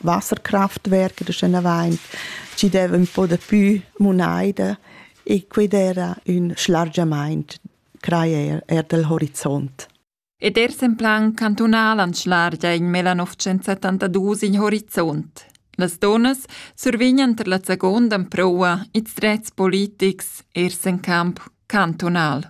Wasserkraftwerke da Schenavaint, ci deva un po da pü munaida e quid era ün schlargiamaint crajer er del horizont. Ed ers en plan cantunal anschlargia in mela 972 in horizont. Las donas survignan ter la seconda proua ils drets politics ers en camp cantunal.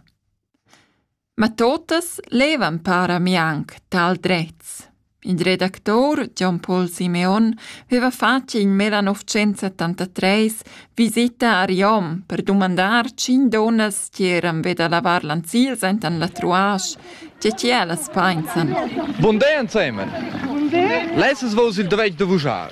Ma totas levan para mianc tal drets. Il redactor Gian Paul Simeon veva fatg in 1973 visita a Riom per dumandar cinc donnas che eran ved a lavar lanzils enten la truasch, tge che ellas pensan. Bun day ensemen. Lessas vos il dovech da vuschar.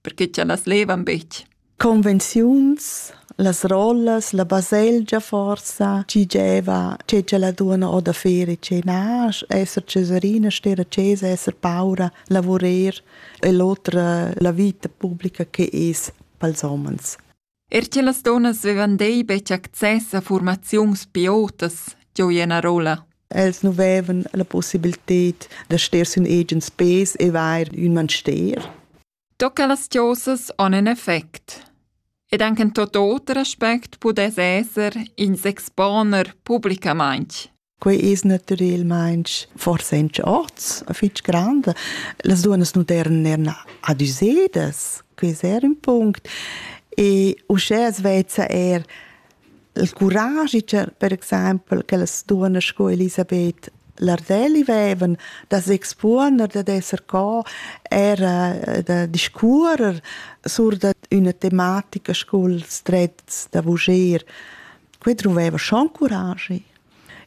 perché cha las levan betg. Convenziuns, las rollas, la baselgia forsa, chi gieva, che cha la duona o da fer e ce nasch, esser cesarina, stera cesa, esser paura, lavurer e l'otra la vita pubblica che es pels homens. Er che las dunnas vevan dei betg access a formaziuns piotas, gioi ena rolla. Els nu vevan la possibilität da ster sün agens pes e vair ün manster. Tocca las tiosas on en effect. Ed anche en tot oter aspect pudess esser ins exponer publicamaintg. Quei es natürelmaing forsa in orts fich grand. Las duonas nu deran eir adüsedas, quai es eir ün punct. E uschè as vezza eir il curagi per exaimpel che las duonas sco Elisabeth Lardelli vevan da s'expuoner, dad esser co era da discuorer sur da üna tematica scu'ls drets da vuger. Quei druveva schon curagi.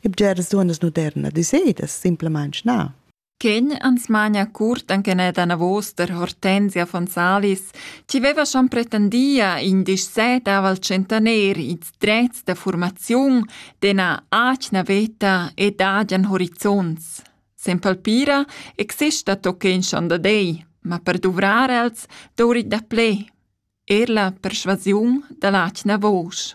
E bgeras duonnas modernas dissedas simplamaing na. Ken ans mania curt anche ne davos der Hortensia von Salis, ci veva schon pretendia in disset aval centener its drets da formaziun dena acna veta ed agian horizonts. Sen palpira exista tochen schon da dei, ma per duvrar els dourit da ple. Er la perschuasiun da l'atgna vusch.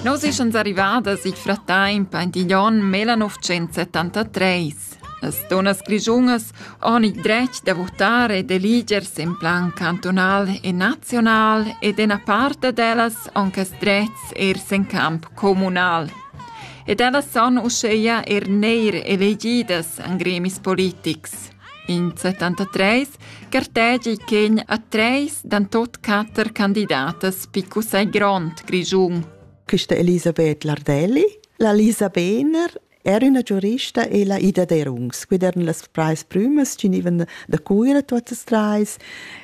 Nos eschans arrivadas il frattemp aint igl onn 1973. As donas grischungas han il dretg da votare e d'eligers en plan cantonal e naziunal ed ena parte d'ellas han quest dretgs ers en camp comunal. ed ellas son uscheia er neir elegidas an gremis politics. In 73 gartegi chegn a treis dan tot quatter candidatas picus ai grond Grigiun. Questa Elisabeth Lardelli, la Lisa Behner era una giurista e la Ida Derungs, quid eran las preis prümas che nivan da Cuira totas treis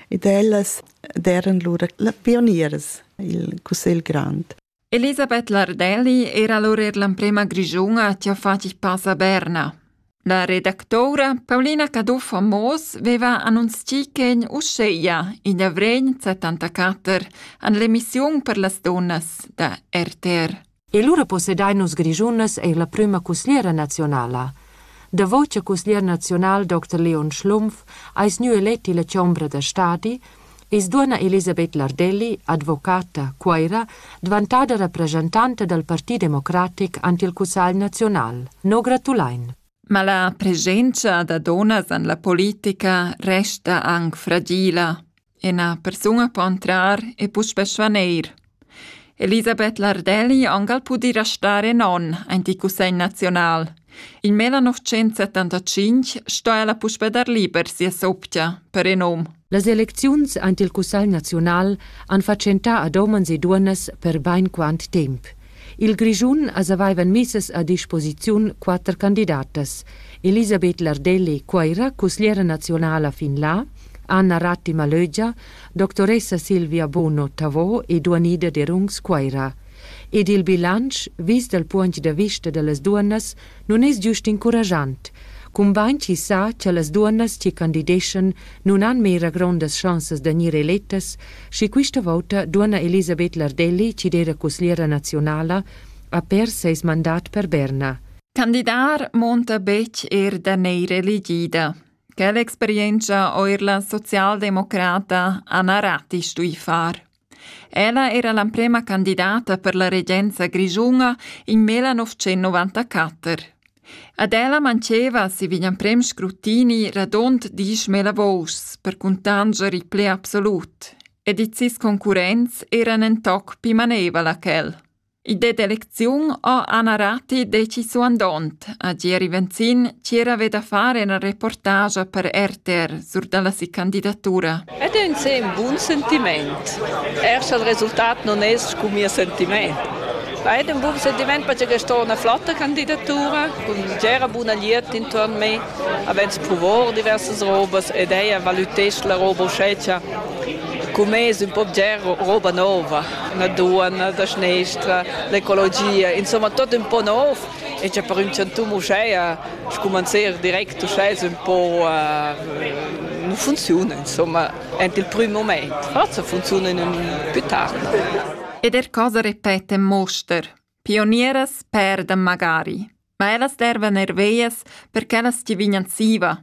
ed ellas eran lura la pionieras il Cussegl Grand. Elisabeth Lardelli era lur er l'emprema grischuna chi ha fat il pass a Berna. La redactoura Paulina Caduff a Moos veva annunzchì ch'en uscheia, in avregn 74, an l'emissiun per las dunnas da RTR. E lura possedain nus Grischunas eir la prüma cusgliera nazionala. Davo cha cusglier naziunal Dr. Leon Schlumpf ais gnü elet illa chombra da stadi, i's duonna Elisabeth Lardelli, advocata, Cuoira, dvantada rapresentanta dal Parti democratic ant il Cussagl naziunal. No gratulain. Ma la presenza da donas en la politica resta anche fragila e una persona può entrare e può spesso neir. Elisabeth Lardelli angal pudi restar in onn aint il Cussegl naziunal. In mel 1975 sto ella puspe dar liber sia soptia per in um. Las elecziuns aint il Cussegl naziunal han fatschentà ad omens e duonnas per bain quant temp. Il Grischun as avaivan missas a disposiziun quatter candidatas. Elisabeth Lardelli, Coira, cusgliera nazionala fin là, Anna Ratti Malögia, doctoressa Silvia Bono Tavò e duanida d'Erungs Cuaira. Ed il bilansch vis dal puogn da vista da las duonnas nun es giust incurajant, cumbain chi sa cha las duonnas chi candideschan nun han mera grondas schanzas da gnir elettas, schi quista vouta duonna Elisabeth Lardelli chi d'eira cusgliera naziunala ha pers seis mandat per Berna. Candidar monta betg er da neir elegida. Quella experientscha eir la socialdemocrata Anna Ratti stui far. Ella era l'emprema candidata per la regenza grischuna in 1994. Ad ella manceva si vegn emprem scrutini radond disch mela vous per cuntanger il ple absolut, ed its concurrents eran en toc pi manevala ch'el. Il det d'elecziun ho Anna Ratti decisu andond a Gieri Venzin ch'ir haveva da far ina reportagia per RTR sur dalla si candidatura. Ed è ün sem bun sentiment. Er sch'el resultat non es scu mia sentiment. Ma ed ün bun sentiment perche sto üna flotta candidatura cun gera buna glieud intuorn me, avess provo diversas robas ed ella valütess la roba uschè cha cun me es ün po bger roba nova. la duana da schnestra, l'ecologia, insomma tot un po nov e c'è per un chantum uschè scumanzer direct uschè es un po uh, non funziona insomma ent il prüm moment forse funziona in ün più tard ed er cosa repete Moster pionieras perdan magari ma ellas dervan er veias per ch'ellas ti vignan siva